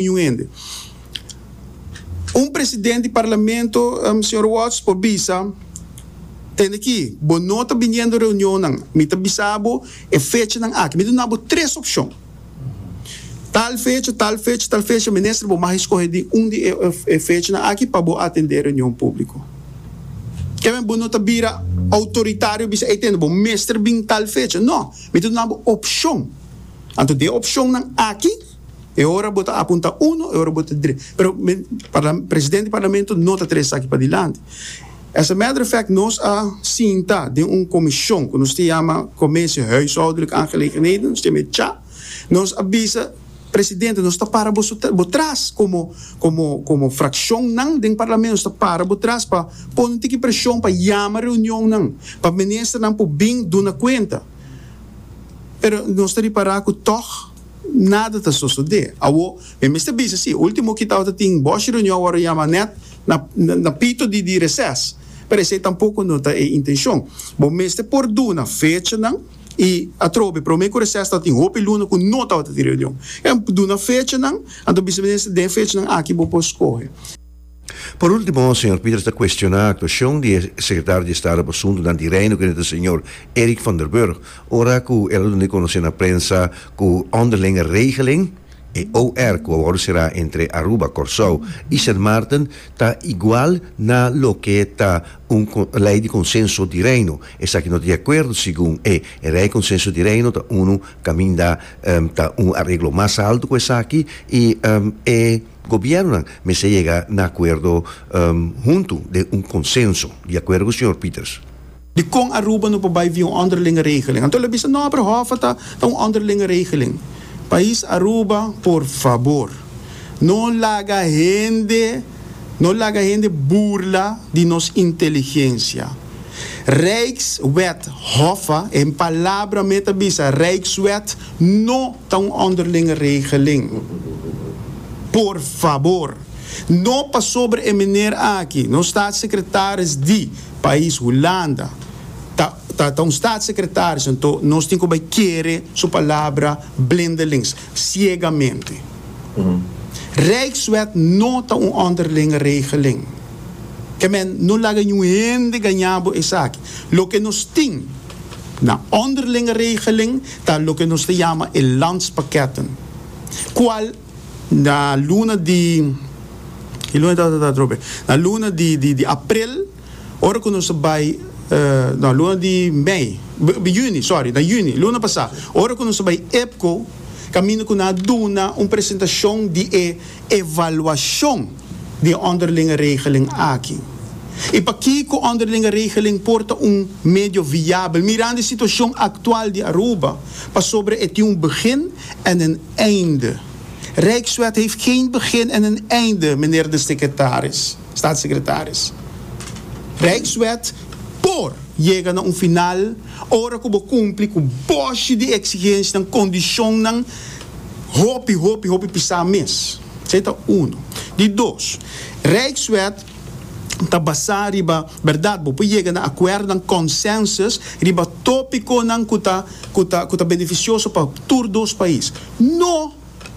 Niun hende. Un presidente di parlamento, señor Watts, por bisa, Tende ki, bo no ta biniendo reunionnan. Mi ta bisa bo e fechanan aki. Mi ta dunabo tres opcion. Tal fecha, tal fecha, tal fecha. Minister, bo mag escoge di un di e fechanan aki pa bo atende e reunion publico. Ke men bo no ta bira autoritario y bisa, Ey, tende, bo mester bin tal fecha. No. Mi ta dunabo opcion. Anto di e opcionnan aki. E ora bo ta apunta uno, e ora bo ta dre. Pero mi parla, presidente di parlamento no ta trese esaki padilanti. As a matter of fact, nos a sinta den un comision cu nos ta yama Commissie Huishoudelijke Aangelegenheden, nos ta yama e cha. Nos a bisa presidente, nos ta para bo su, bo tras como, como, como fraccionnan den parlamento, nos ta para bo tras pa pone un tiki presion pa yama reunionnan, pa ministernan por bin duna cuenta. Pero nos ta ripara cu tog. Nada ta sosode. Awor, mi mester bisa si, ultimo ki tabatin tin boshi reunion awor a yama net na na pito di di reses. Pero esei tampoco no ta e intencion. Bo mester por duna fechanan y atrobe prome cu reses tabatin hopi luna cu no tabata tin reunion. Duna fechanan, anto bisa minister den fechanan aki bo por scoge. Por ultimo, señor Peters ta cuestioná actuacion di e Secretario di Estado pa Asuntonan di Reino Unido señor Eric van der Burg ora cu el a duna di conoce na prensa cu onderlinge regeling, e OR cu a wordo cerá entre Aruba, Corsou y Sint Maarten ta igual na loke ta un Ley di Consenso di Reino. Esaki no ta di acuerdo segun e. E Ley Consenso di Reino ta unu caminda ta un areglo mas alto cu esaki y e. Gobièrnunan mester yega na akuerdo huntu den un konsenso, di akuerdo ku señor Pieters. Dikon Aruba no por bai via un onderlinge regeling? Anto el a bisa, No, pero Hoffa ta ta un onderlinge regeling. Pais Aruba, por fabor, no laga hende, no laga hende burla di nos inteligensia. Rijkswet, Hoffa, e palabra mei ta bisa Rijkswet, No ta un onderlinge regeling. Por fabor, no pasobra e meneer aki, nos staatssecretaris di pais Hulanda, ta ta ta un staatssecretaris, anto nos tin cu bay kere su palabra blindelings, ciegamente. Rijkswet no ta un onderlinge regeling. Kemen, no laga ningun hende gaña bo esaki. Loke nos tin. Na onderlinge regeling ta loke nos ta yama e landspakketten, kual na luna di, e luna di tata ta atrobe, na luna di di di aprel, ora ku nos a bai, no, luna di mei, juni, sòri, na juni, luna pasá, ora ku nos a bai EPCO, kaminda ku nan a duna un presentashon di e. evaluashon di e ònderlinge regeling aki i pakiko ònderlinge regeling por ta un medio viabel mirando e situashon aktual di Aruba pasobra e tin un begin en een einde. Rijkswet heeft geen begin en een einde, meneer de secretaris, staatssecretaris. Rijkswet por yega na un final ora ku bo kumpli ku bòshi di eksigensianan, kondishonnan, Hopi, hopi, hopi pisá mes. Esei ta unu. Di dos, Rijkswet ta basá riba bèrdat. Bo por yega na akuerdonan, consensus, riba tópikonan ku ta ku ta ku ta benefisioso pa tur dos pais. No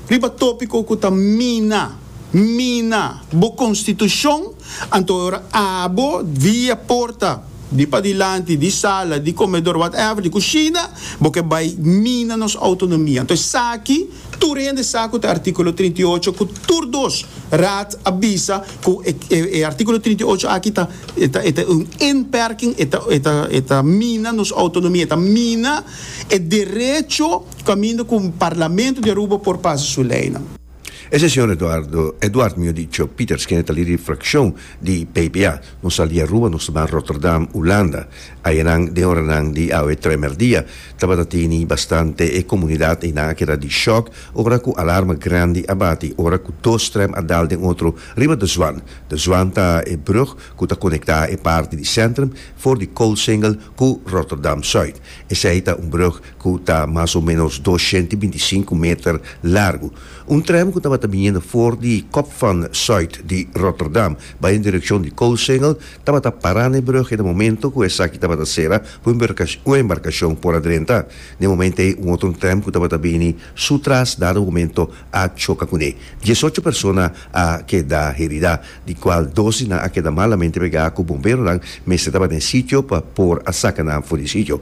riba tópiko ku ta mina mina bo konstitushon, anto e ora abo via porta. di padilanti di sala di komedor whatever di kushina bo ke bai mina nos outonomia anto esaki tur hende sa ku ta artikulo trinta i ocho ku tur dos raad a bisa ku e artikulo trinta i ocho aki ta e ta e ta un inperking e ta e ta e ta mina nos outonomia e ta mina e derecho kaminda ku Parlamento di Aruba por pasa su leynan. E sesion Eduardo Eduard mi a dicho Pieters kende ta lidi frakshon di PPA. Nos sali di Aruba nos ta ban Rotterdam, Ulanda. Ayanan den oranan di awe tremer dia tabata tini bastante e komunidat einan a keda di shòk ora ku alarma grandi a bati ora ku dos trèm a dal den otro riba De Zwaan. De Zwaan ta e brug ku ta konektá e parti di Centrum for di Coalsingel ku Rotterdam-Zuid. Esei ta un brug ku ta mas o ménos dos shent i binti i sinku meter largu, un trèm ku tabata biniendo for di Kop van Zuid di Rotterdam bai den direkshon di Coosengel, tabata pará na e brùg e na momento ku esaki tabata sera ku un embarkashon por a drenta. Na e momento ei un otro trèm ku tabata bini su tras dado momento a choka kuné. Dies ocho persona a keda heridá, di kual dos di nan a keda malamente pegá ku bomberonan mester ta ba den sitio pa por a saka nan for di sitio.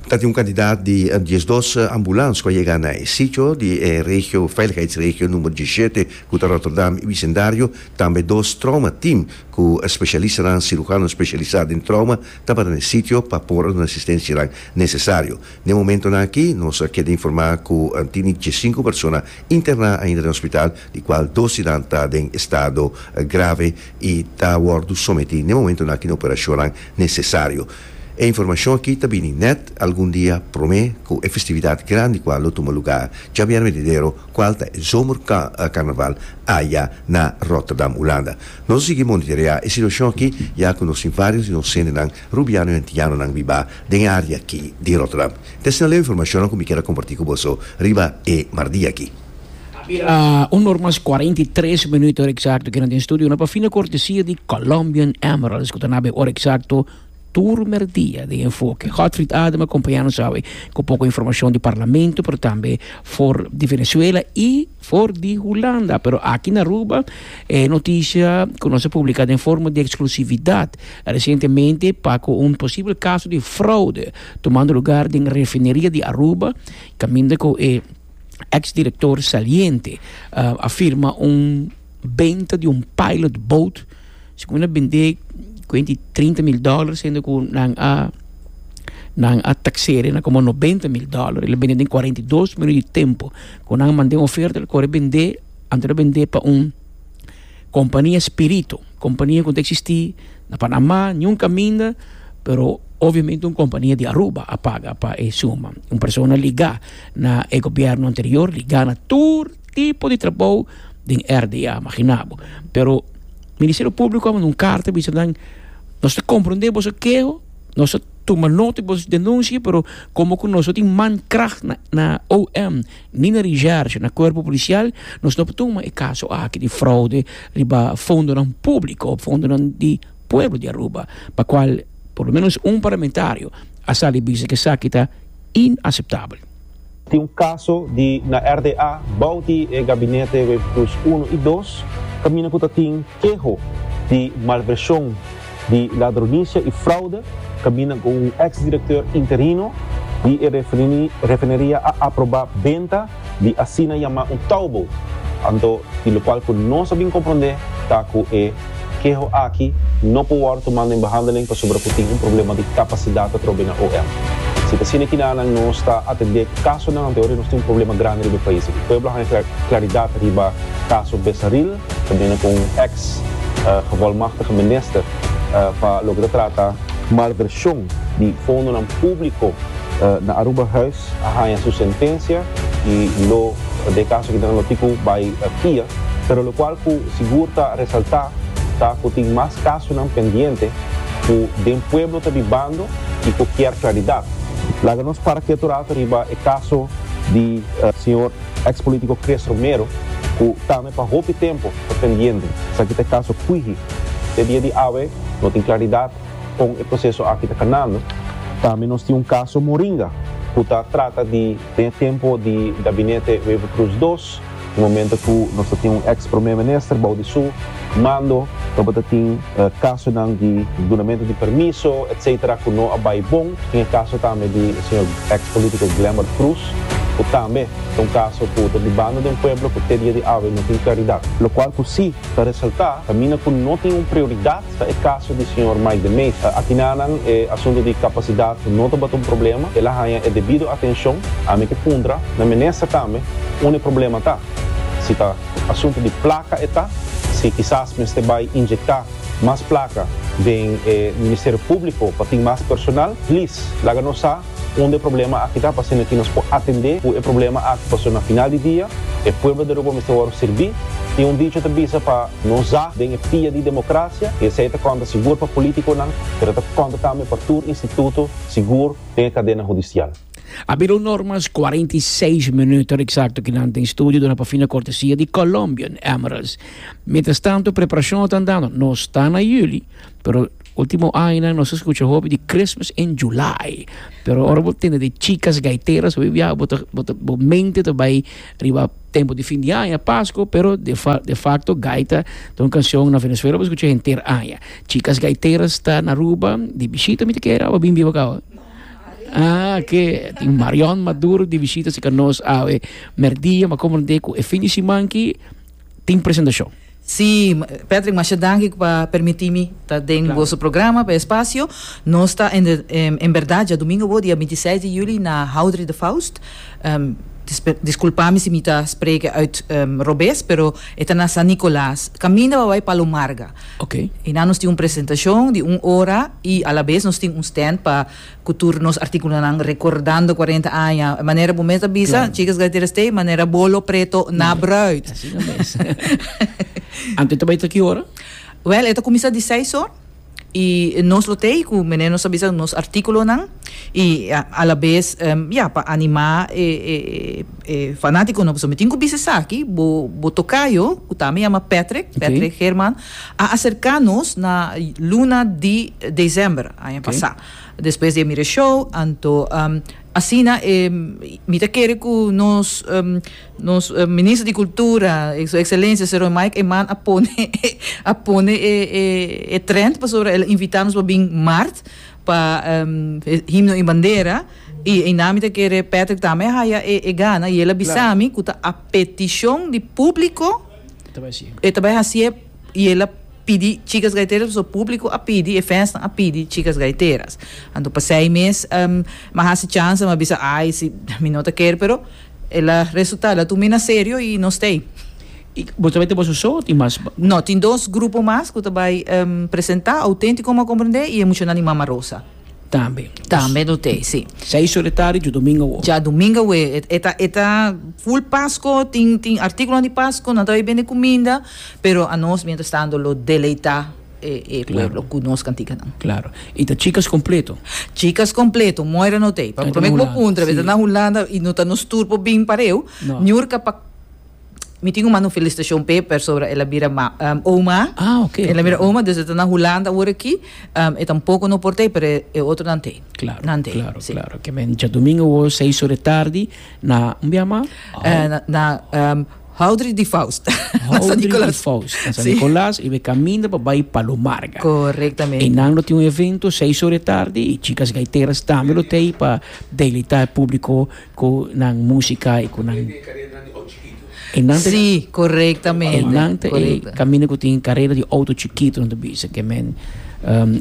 Ta tin un kantidat di diesdos ambulans ku a yega na e sitio di e regio veiligheidsregio numero diesishete ku ta Rotterdam i bisendario. Tambe dos trouma tim ku spesialistanan, sirugano spesialisá den trouma, tabata na e sitio pa por a duna asistensianan nesesario. Na e momentonan aki nos a keda informá ku tini diesinku persona interná ainda den hospital, di kual dos di nan ta den estado grave i ta wòrdu sometí na e momentonan aki na operashonnan nesesario. E informashon aki ta bini nèt algun dia promé ku e festividat grandi kua lo tuma lugá djabièrnè venidero kual ta e Zomerkarnaval aya na Rotterdam, Hulanda. Nos a sigui monitoreá e situashon aki ya ku nos tin vários di nos hendenan rubiano i antianonan bibá den e área aki di Rotterdam. Tèsna leu e informashonnan ku mi keda kompartí ku boso riba e mardia aki. A bira un or mas cuarenta y tres minuto ora exacto que nan den studio na pa fina cortesia di Colombian Emeralds cu ta na be ora exacto tur merdia den Enfoke. Godfried Adem a compaña nos awe cu poco informacion di Parlamento pero tambe for di Venezuela y for di Hulanda. Pero aki na Aruba e noticia cu nos a publica den forma di exclusividad recientemente pa cu un posible caso di fraude tumando lugar den refineria di Aruba caminda cu e ex director saliente a firma un benta di un pilot boat segun a bende kwenti trinta mil dollar siendo ku nan a nan a taksere na komo nobenta mil dollar el a bende den kuarenta i dos minuut di tempo ku nan a mande un oferta el kore bende anto di a bende pa un kompania spirito kompania ku ta eksistí na panamá ni un kaminda pero obviamente un kompania di Aruba a paga pa e suma un persona ligá. Na e gobierno anterior di gana tur tipo di trabou den RDA, magina bo. Pero Ministerio Público a manda un carta a bisa nan nos ta comprende boso keho, nos ta tuma nota di boso denuncie, pero como cu nos no tin mankracht na na OM ni na Recherche, na Cuerpo Policial, nos no por tuma e caso aki di fraude riba fondonan público, fondonan di pueblo di Aruba, pa cual por lo menos un parlamentario a sali bisa cu esaki ta inaceptabel. Tin un caso di na RDA bao di e gabinete Webplus uno y dos caminda cu ta tin keho di malversion di ladronicia y fraude caminda cu un ex directeur interino di e refineria a aproba benta di asina yamá un towboat, anto di lokual ku nos a bin komprondé ta ku e keho aki no por wòrdu tumá den behandeling pasobra ku tin un problema di kapasidat atrobe na OM. Si ta asina kinanan nos ta atendé kasonan anterior i nos tin un problema grandi riba e pais aki. Pueblo a haña klaridat riba kaso Besaril ta bini ku un eks Gevolmachtige Minister pa loke ta trata malvershon di fondonan públiko na Aruba. a haña su sentencia y lo de e caso ki ta na notico bay kia, pero locual cu sigur ta resalta ta cu tin mas casonan pendiente cu den pueblo ta bibando y cu kier claridad. Laga nos para quieto rato riba e caso di señor ex politico Chris Romero cu tambe pa hopi tempo ta pendiente. Esaki ta e caso Cuiji. Te dia di awe no tin claridad kon e proseso aki ta kanando. Tambe nos tin un kaso Moringa ku ta trata di den e tempu di gabinete Wever Croes dos, e momento ku nos ta tin un eks Prome Minister bou di su mando tabata tin kasonan di dunamentu di permiso etc ku no a bai bon. Tin e kaso tambe di e señor eks politiko Glenbert Croes ku tambe ta un kaso ku ta dibando den pueblo ku te dia di awe no tin klaridat. Lokual ku si ta resalta ta mina ku no tin un prioridat Ta e kaso di señor Mike de Meza. Akinanan e asuntu di kapasidat no tabata un problema, el a haña e debido atenshon. Ami ke puntra na minister tambe unda e problema ta, si ta asuntu di plaka e ta, si kisas mester bai injekta mas plaka den e Ministerio Públiko pa tin mas personal. Plis laga nos sa. Unda e problema aki ta, pasobra aki nos por atendé ku e problema aki, pasobra na final di dia e pueblo di Aruba mester wòrdu sirbí. Tin un dicho ta bisa pa no za den e pia di demokrasia i esei ta kònta sigur pa polítikonan, pero ta kònta tambe pa tur instituto sigur den e kadena hudisial. A bin un normas kuarenta i seis minuto eksakto ku nan den studio duna pa fin na kortesia di Colombian Emeralds. Mientras tanto preparashon a ta andando, nos ta na yuli pero. Ultimo añanan nos a scucha hopi di Christmas in July. Pero ora bo tende di chicas gaiteras hopi biaha bo ta, bo ta, bo mente ta bay riba tempo di fin di aña, Pasco, pero de fa, de facto gaita ta un cancion na Venezuela bo scucha henter aña. Chicas gaiteras ta na Aruba di bishita mi ta kere awe bin biba cabo? Ah, oke, tin Marion Maduro di bishita si ca nos awe merdia, ma comprende cu e fin di siman aki tin presentacion. Sí, Patrick, masha danki pa permití mi ta den boso programa, pa e spasio. Nos ta en, en berdad dja domingo bo, dia binti seis di juli na Houdery de Faust. Disculpá mi si mi ta spreke uit robes, pero e ta na San Nicolaas, kaminda pa bai Palomarga. Einan nos tin un presentashon di un ora i alabes nos tin un stènt pa. Cu tur nos articulonan recordando cuarenta aña. Manera bo mes a bisa, Chicas Gaiteras t'e manera bolo preto na bruid. Así no mes. Anto e ta bay ta ki ora? Wel, e ta cuminsa di seis or. Y nos lo t'e cu mene nos a bisa nos articulonan y a la vez ya pa anima e e fanaticonan. Pasobra mi tin cu bisa esaki, bo bo tocayo, cu tambe yama Patrick, Patrick Herman, A acerca nos na luna di december aña pasa, despues di e mira e show, anto asina e mi ta kere cu nos nos Minister di Cultura, Su Excelencia Señor Mike Eman a pone a pone e trend pasobra el a invita nos pa bin Maart pa e Himno y Bandera y eina mi ta kere Patrick tambe a haya e gana y el a bisa mi cu ta a peticion di publico. E ta bai hasié i el a pidi chicas gaiteras pasobra público a pidi, e fans nan a pidi chicas gaiteras. Anto pasei mes mi a hasi chansa, mi a bisa ai si mi no ta ker pero el a resulta, el a tumina serio i nos ta ei. I bo ta bai ta boso so o tin mas? No, tin dos grupo mas ku ta bai presenta, Autentico mi a komprende i e mushonanan di Mama Rosa. Tambe. Tambe no te, si. Seis ora di tardi dja domingo awo. Dja domingo awo. E ta, e ta full Pasko, tin, tin articulonan di Pasko, nan ta bay bende cuminda, pero a nos mientras tanto lo deleita e, e pueblo cu nos canticanan. Claro. Y ta chicas completo? Chicas completo, Moira no te. Promé cu bo puntra, bo ta na Hulanda y no ta nos tur por bin pareu, Niurka pa. Mi tin un mano felicitacion p'e persobra el a bira ma, oma. Ah, ok, ok. El a bira oma, dus e ta na Hulanda awor aki. E ta un poco no por t'ei, pero e otronan t'ei. Claro, Nan t'ei, claro, si. claro. Ke men djadumingu awor seis ora e tardi na, un biaha mas? Eh, na, na, Houdry di Faust, na San Nicolas. Houdry di Faust, na San Nicolas. Si. I be kaminda pa bai Palomarga. Correctamente. I nan lo tin un evento seis ora e tardi, i chikas gaiteras tambe lo t'ei pa delita e publico. Ku nan musika i ku nan e nan ta. Sí, korektamente. E nan ta e kaminda ku tin karera di outo chikitu, nan ta bisa ke men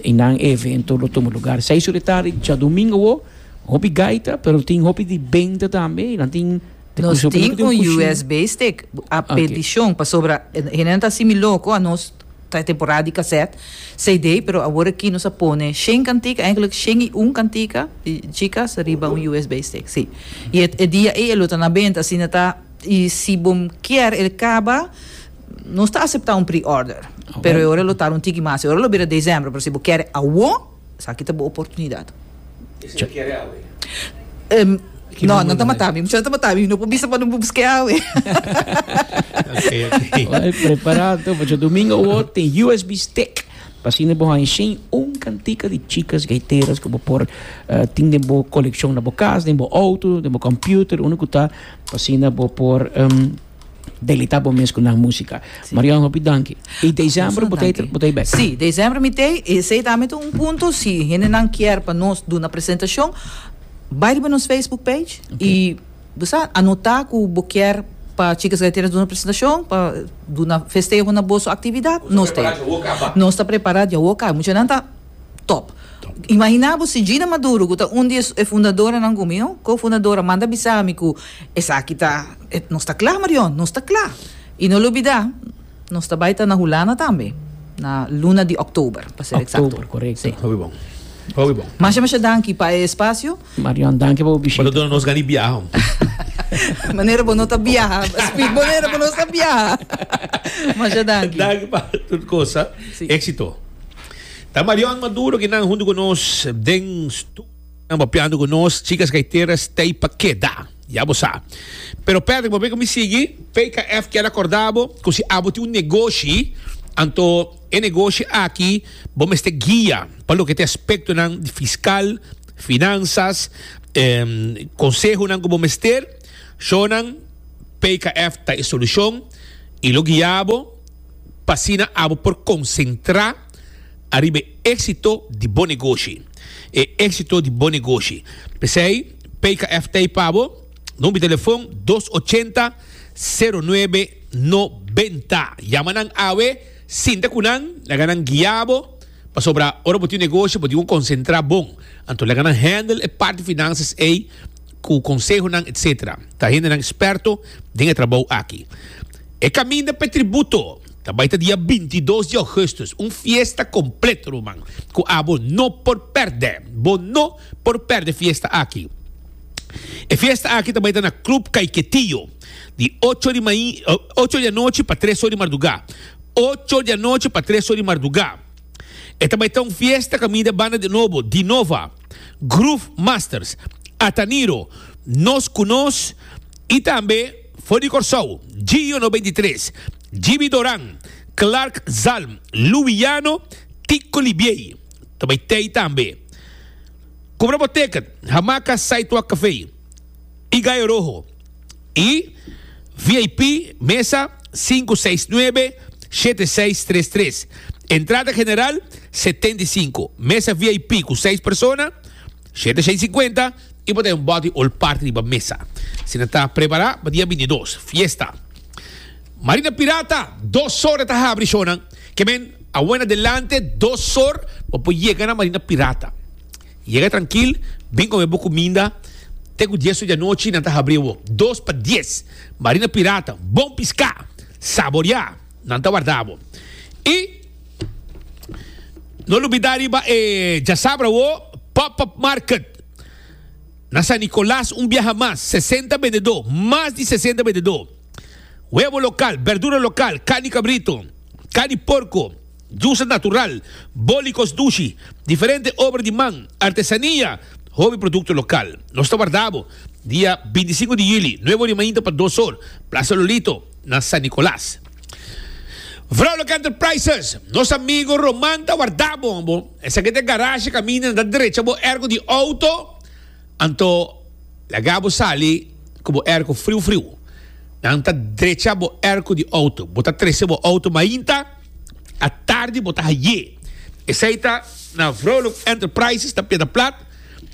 i nan e evento lo tuma lugar seis ora di tardi djadumingu awor. Hopi gaita, pero tin hopi di benta tambe i nan tin. Nos tin un USB stick, a petishon, pasobra hende nan ta hasi mi loko, a nos. Ta e temporada di kasèt, CD, pero aworakí nos a pone shen kantika, èinklik shen i un kantika di chikas riba un usb stick, sí. I e e dia ei e lo ta na benta, asina ta. I si bo kier el kaba, nos ta aseptá un pre-order, pero e ora lo tar un tiki mas, e ora lo bira desèmbru, pero si bo kier awor. Esaki ta bo oportunidat. E siñor kere awe. No, nan ta mata mi. Muchanan ta mata mi. No por bisa pa no busk'e awe. Oke, prepará anto pasobra domingo awor tin USB stick. Pa asina bo haña shin un kantika di chikas gaiteras ku bo por tin den bo kolekshon na bo kas, den bo outo, den bo kòmpiuter, unda ku ta, pa asina bo por. Delita bo mes ku nan musika. Marion, hopi danki. I desèmbru bo ta bo ta bèk? Si, desèmbru mi ta ei. Esei ta mete un punto, si hendenan kier pa nos duna presentashon, bai riba nos facebook page i bo sa anotá ku bo kier pa Chicas Gaiteras duna presentashon, pa duna festeho na boso aktividat, nos ta ei. Nos ta prepará djawoka. Nos ta prepará djawoka. Muchanan ta tòp. Imaginá bo si Gina Maduro, ku ta un di e fundadoranan ku mi, un kofundadora, manda bisa mi ku esaki ta Nos ta kla, Marion, nos ta kla. I no lubidá, nos ta bai ta na Hulanda tambe, na luna di òktober, pa ser eksakto. Òktober, korekto. Hopi bon, hopi bon. Masha masha danki pa e espasio. Marion, danki pa bo bishita. Bo ta duna nos gana di biaha, hombre. Manera bo no ta biaha, speak manera bo no ta biaha. Masha danki. Danki pa tur kosa. Éksito. Ta Marion Maduro kinan huntu ku nos den. Nan bopiando cu nos, chicas gaiteras t'ey pa keda, ya bo sa. Pero Patrick, bo mira cu mi sigui, PKF kier a corda bo cu si abo tin un negoshi, anto e negoshi aki bo mester guia pa loke t'e aspectonan di fiscal, finanzas, consehonan cu bo mester, sho nan PKF ta e solucion y lo guia bo p'asina abo por concentra. Ariba e éksito di bo negoshi. E éksito di bo negoshi. P'esei, PKF t'ei pa bo. Number di telefòn, dos ochenta, sero nuebe, nobenta. Yama nan awe, sinta ku nan, laga nan guia bo. Pasobra ora bo tin un negoshi, bo tin ku konsentrá bon. Anto laga nan hèndel e parti finansias ei ku konsehonan etsetera. Ta hendenan sperto den e trabou aki. E kaminda p'e tributo. Ta bai ta dia bintidos di Augustus, un fiesta complet ruman, cu abo no por perde. Bo no por perde fiesta aki. E fiesta aki ta bai ta na Club Caiquetillo, di ocho di main, ocho di anochi pa tres or di marduga, ocho di anochi pa tres or di marduga. E ta bai ta un fiesta caminda banda di nobo, Dinova, Groove Masters, Ataniro, Nos Cu Nos y tambe. For di Kòrsou, Gio no beinti tres, Jimmy Doran, Clark Zalm, Louis Llano, Tico Libiey ta bai tei tambe. Kumbra bo teket, Hamaca Sidewalk Café i Gallo Rojo i VIP mesa sinku seis nuebe shete seis tres tres. Entrada general setenta i sinku, mesa VIP ku seis persona. Shete shei singwenta i bo ta den bòt di ol parti riba mesa. Si nan ta prepará pa dia bintidos, fiesta. Marina Pirata, dos or e ta habri shownan. Ke men, awen adelante dos or bo por yega na Marina Pirata. Yega trankil, bin kome bo kuminda. Te ku dies or di anochi nan ta habri awor. Dos pa dies, Marina Pirata, bon piská, saboriá, nan ta warda bo. I. No lubidá riba e djasabra wo, Pop-up Market na San Nicolas un biaha mas, sesenta bendedó, mas di sesenta bendedó, webo lokal, berdura lokal, carni kabritu, carni porko, djusnan natural, bólikos dushi, diferente obra di man, artesania, hopi produkto lokal. Nos ta warda bo dia binti i sinku di yuli, nuevo rimainta pa dos or, Plaza Lolito na San Nicolas. Vrouwelijke Enterprises, nos amigo Roman ta warda bo, bo. Esaki te garage caminda na ta derecha bo airco di auto, anto laga bo sali cu bo airco friu friu. Nan ta derecha bo airco di auto. Bo ta trece bo auto mainta, atardi bo ta haye. Esai ta na Vrouwelijke Enterprises na Piedaplat.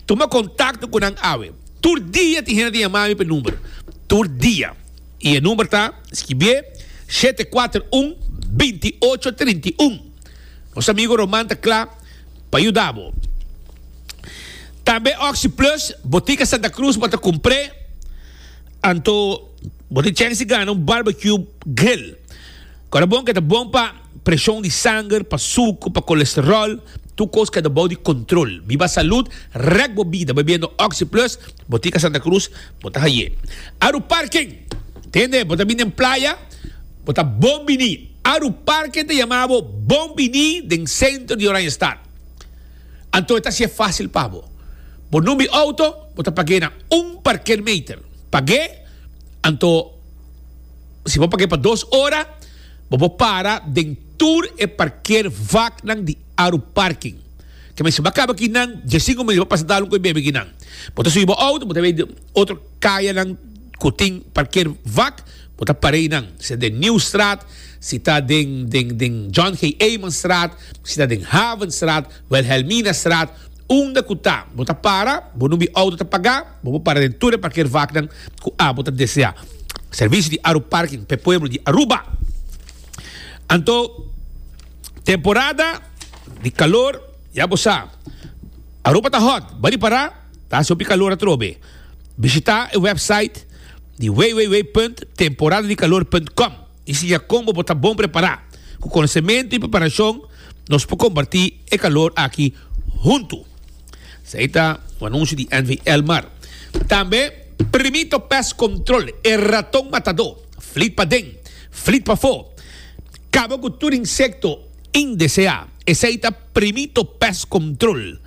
Tuma contacto cu nan awe. Tur dia tin hende ta yama mi p'e number. Tur dia. Y e number ta, skibié, shete kuater un, binti ocho trinta i un. Nos amigo Roman ta kla pa yuda bo. Tambe Oxi Plus, Botica Santa Cruz bo ta kumpr'é, anto bo tin chèns di gana un barbecue grill. Kòrda bon ku e ta bon pa. Presion di sanger, pa suku, pa kolesteròl, tur kos keda bou di kontrol. Biba salud rèk bo bida bebiendo Oxi Plus, Botica Santa Cruz, bo ta haye. Aru Parken! Tende, bo ta bin den playa? Bo ta bon bini! Aru Parken ta yama bo bon bini den sentro di Oranjestad. Anto e ta hasié fásil pa bo. Bo numbi outo, bo ta pag'é na un parkeermeter. Pag'é, anto si bo pag'é pa dos ora, Bo por para den tur e parkeer vaknan di Aru Parking. Ke men si bo a kaba aki nan dje sinku minut bo pasa dalun ku e bebe aki nan. Bo ta subi bo outo, bo ta bai otro kayanan ku tin parkeer vak, bo ta para einan. Si ta den Nieuwstraat, si ta den John G. Eymanstraat, si ta den Havenstraat. Wilhelminastraat, unda cu ta bo ta para, bo numbi auto ta pagá, bo por para den tur e parkeervaknan cu abo ta deseá. Servicio di Aruparking p'e pueblo di Aruba. Anto temporada di calor, ya bo sa, Aruba ta hot, bali pará, ta haci hopi calor atrobe. Bishitá e website di www.temporadadicalor.com. I si ya combo bo ta bon prepará. Cu conocemento y preparacion nos por comparti e calor aki hunto. Esei ta un anuncio di NV. Elmar. Tambe Primito Pest Control, e raton matadó, flit paden, flit pafó, caba cu tur insecto indeseá. Esei ta Primito Pest Control.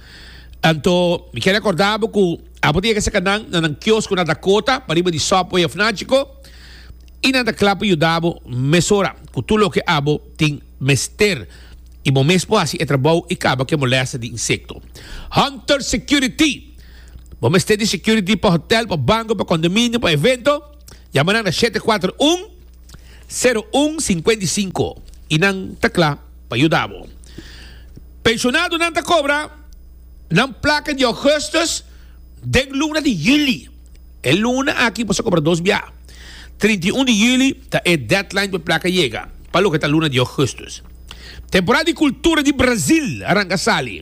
Anto mi kier recordá bo cu abo tin e ke saca nan na nan kiosco na Dakota, pariba di Subway of Nachico. i nan ta kla pa yuda bo mesora ku tur loke abo tin mester i bo mes por hasi e trabou i kaba ku e molèsta di insekto. Hunter Security Bo mester di security pa hotèl, pa banko, pa kondominio, pa evento? Yama nan na shete kuater un, seru un, sinkenta i sinku i nan ta kla pa yuda bo. Penshonado nan ta kobra nan plaka di Augustus den luna di Yuli. E luna aki por sa compra dos biaha. Trinta i un di juli ta e deadline pa e placa yega pa loke ta luna di augustus. Temporada di cultura di Brazil a ranga sali.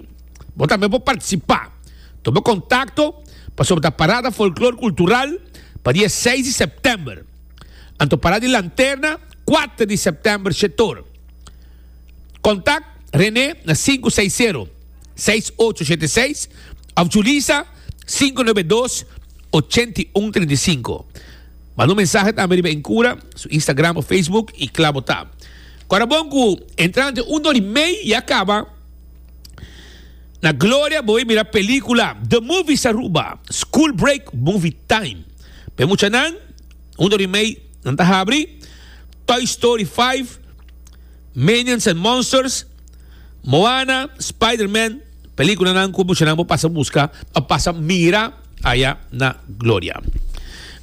Bo tambe por participa. Tuma contacto pasobra ta parada folklor cultural pa dia seis di september. Anto parada di lanterna cuater di september shetor. Kontak René na sinku seis sero, seis ocho shete seis òf Julisa sinku nobe e dos, ochenta i un trinta i sinku. Manda un mensahe tambe riba Incura su Instagram òf Facebook i kla bo ta. Kòrda bon ku entrante un dor i mei ya kaba. Na Gloria bo a mira pelíkula The Movies Aruba, School Break Movie Time. Pa e muchanan, un dor i mei nan ta habri Toy Story five. Minions and Monsters, Moana, Spiderman, peliculanan cu mushanan por pasa busca o pasa mira aya na Gloria.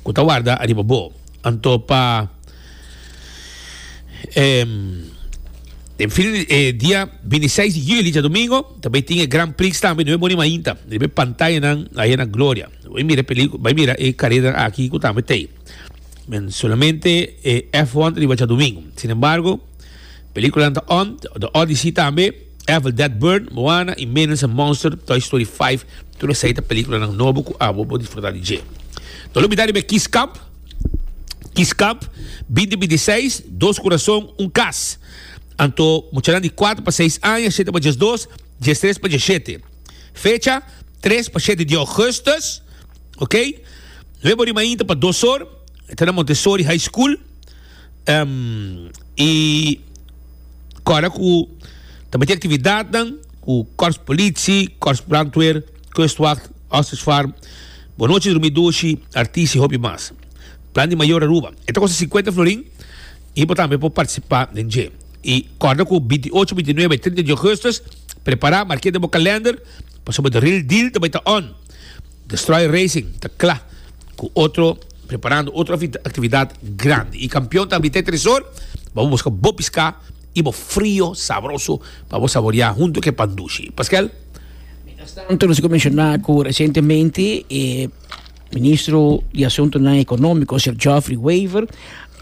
Cu ta warda ariba bo. Anto pa em, den fin eh, dia 26 di juli, ja domingo, ta bay tin e Grand Prix tambe, no e boni mainta, riba e pantayanan aya na Gloria. Bay mira e pelicu- bay mira e carera aki cu tambe t'ey. Men solamente e F1 ta riba Tjadoming. Sin embargo, películanan ta on, The Odyssey tambe, Evil Dead Burn, Moana y Minions and Monsters, Toy Story 5, tur esei ta películanan nobo cu abo por disfruta di dje. No lo bida riba e Kies Cup, Kies Cup 2026, dos curason, un cas. Anto muchanan di cuater pa seis aña, shete pa diesdos, diestres pa dieshete. Fecha, tres pa shete di augustus. Ok. Luego di mainta pa dos or, e ta na Montessori High School. Um, y cora cu ta meti actividadnan cu Corps Politie, Corps Brandweer, Kustwacht, Ostrich Farm, Bonochi Drumi Dushi, Artis y hopi mas. Plan di mayor Aruba. E ta costa cincuenta florin y bo tambe por participa den dje. Y corda cu binti ocho, binti nuebe y trinta di augustus, prepara, mark'e den bo calender, pasobra the real deal ta bay ta on. Destroyer Racing ta kla ku otro preparando otro aktividat grandi i kampion ta Abité Tresor pa bo buska bo piská i bo frio sabroso pa bo saboreá huntu ku e pan dushi. Paskel. Mientras tanto nos a por menshoná ku resientemente e Ministro di Asuntonan Ekonómiko, Sr. Geoffrey Wever,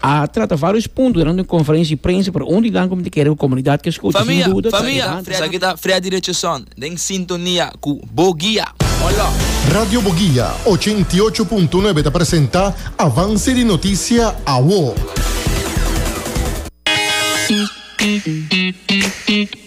A trata varios punto durante un conferencia di prensa pero un di nan cu mi ta kere cu comunidad ke scucha sin duda ta Evandro. Esaki ta Freddy Richardson den sintonia cu Bo Guia. Hola. Radio Bo Guia ochenta i ocho punto nuebe ta presenta Avance di Noticia Awo.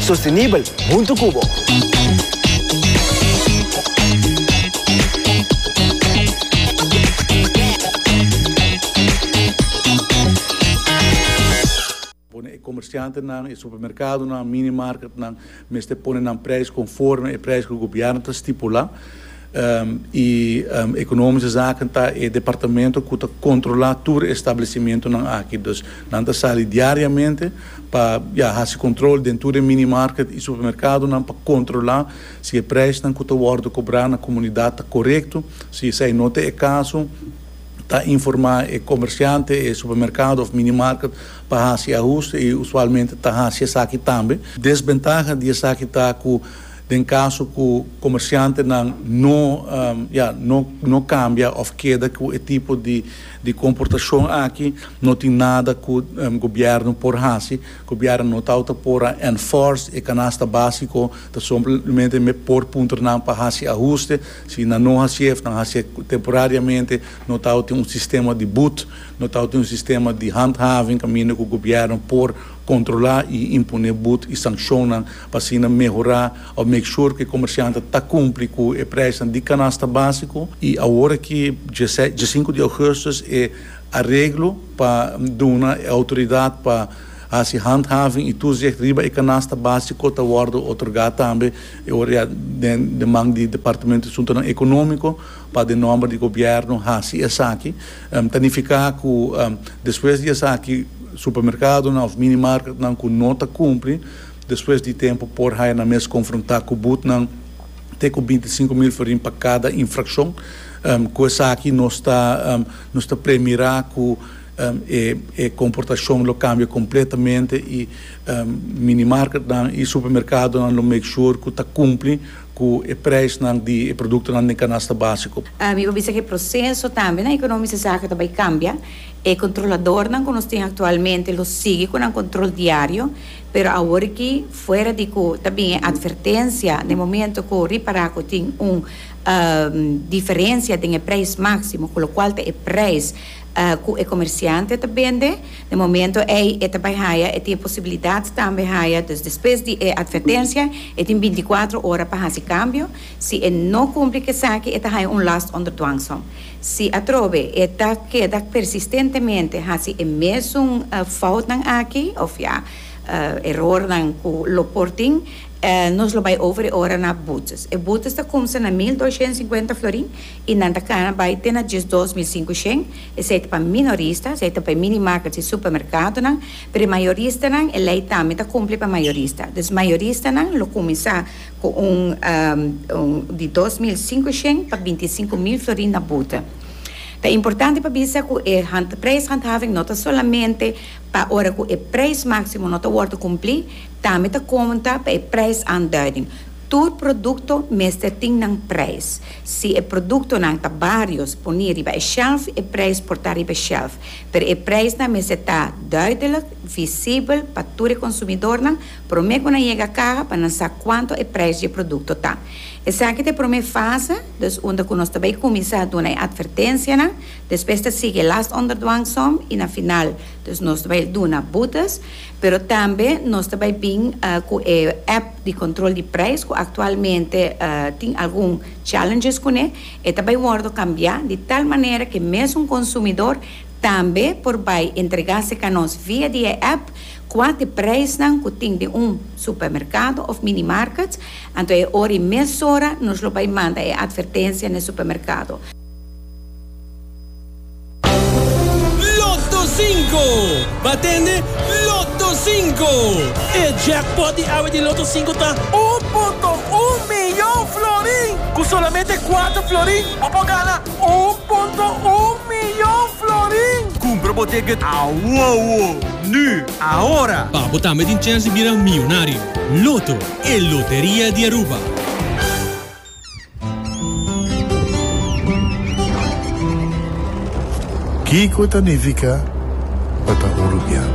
Sostenibel huntu cu bo. Pone e comerciantenan, e supermercadonan, minimarketnan mester pone nan prijs conforme e prijs cu gobierno ta stipula. i Economische Zaken ta e departamento cu ta controla tur e establecimentonan aki. Dus nan ta sali diariamente pa ya haci control den tur e minimarket i supermercadonan pa controla si e prijsnan cu ta wordo cobra na comunidad ta corecto. Si esai no ta e caso ta informa e comerciante, e supermercado of minimarket pa haci ahuste i usualmente ta haci esaki tambe. Desventaha di esaki ta cu Den caso cu comerciantenan no ya no cambia of keda cu e tipo di comportacion aki, no tin nada cu gobierno por haci. Gobierno no tawata por a enforce e canasta basico, ta somplemente me por puntra nan pa haci ahuste. Si nan no hacié of nan hacié temporariamente, no tawatin un sistema di boet, no tawatin un sistema di handhaving caminda cu gobierno por controla y imponé boet y sanccionnan. pa asina mehorá òf make sure ku e komersiantnan ta kumpli ku e preisnan di kanasta básiko i awor aki dieses diesinku di ougustus e areglo pa duna e outoridat pa hasi handhaving i toezicht riba e kanasta básiko ta wòrdu otorgá tambe e ora ya den den man di departamento di asuntonan ekonómiko pa den nòmber di gobièrnu hasi esaki ta nifiká ku despues di esaki supermerkadonan òf mini marketnan ku no ta kumpli Despues di tempu por haya nan mes konfrontá ku butnan te ku binti sinku mil forin pa kada infrakshon. Ku esaki nos ta nos ta premirá ku e e komportashon lo kambia kompletamente i minimarketnan i supermerkadonan lo make sure ku ta kumpli ku e preisnan di e produktonan den kanasta básiko. Mi por bisa ku e proseso tambe na Ekonómico e saki ta bai kambia. E kontroladornan ku nos tin aktualmente lo sigui ku nan kontrol diario Pero awor aki, fuera di cu ta bin e advertencia na e momento cu ripara cu tin un diferencia den e prijs maximo, cu locual ta e prijs cu e comerciante ta bende, na e momento ey e ta bay haya, e tin e posibilidad tambe haya, dus despues di e advertencia e tin binticuatro ora pa haci cambio, si e no cumpli cu esaki e ta haya un last onder dwangsom. Si atrobe e ta keda persistentemente hasi e mesun foutnan aki, òf ya, erornan ku lo por tin, nos lo bai ofere ora na boetes. E boetes ta kumsa na mil doshent sinkuenta florin i nan ta kana bai te na diesdos mil sinku shen. Esei ta pa minorista, esei ta pa e minimarket i supermerkadonan, pero e mayoristanan e lei tambe ta kumpli pa mayorista. Dus mayoristanan lo kuminsá. Cu un di dos mil singushen pa bintisinco mil florin na buta. Ta importante pa bisa cu e prijshandhaving no ta solamente pa ora cu e prijs maximo no ta wordo cumpli, tambe ta conta pa e prijsaanduiding. Tur producto mester tin nan prijs. Si e productonan ta barios poni riba e shelf, e prijs por ta riba e shelf. Pero e prijsnan mester ta duidelijk, visibel pa tur e consumidornan, Promé ku nan yega kaha pa nan sa kuantu e preis di e produkto ta. Esaki ta e promé fase, dus unda ku nos ta bai kuminsá duna e atvertensianan, despues ta sigui e last under dwang som i na final dus nos ta bai duna butas, pero tambe nos ta bai bin ku e app di kontrol di preis ku aktualmente tin algun challenges kuné, e ta bai wòrdu kambiá di tal manera ku e mesun konsumidor tambe por bai entregá se kanos via di e app, Kua t'e preisnan ku tin den un supermerkado òf minimarket? Anto e ora i mesora nos lo bai manda e atvertensia n'e supermerkado. Lotto Cinco! Bo tende? Lotto Cinco! E jackpot di awe di Lotto Cinco ta un punto un miyon florin! Ku solamente kuater florin bo por gana Un punto un miyon florin! Kumpra bo ticket awowo! Nu! Ahora! Pa bo tambe tin chèns di bira miyonario! Loto, e loteria di Aruba! Kiko ta nifiká pa ta un rubiano?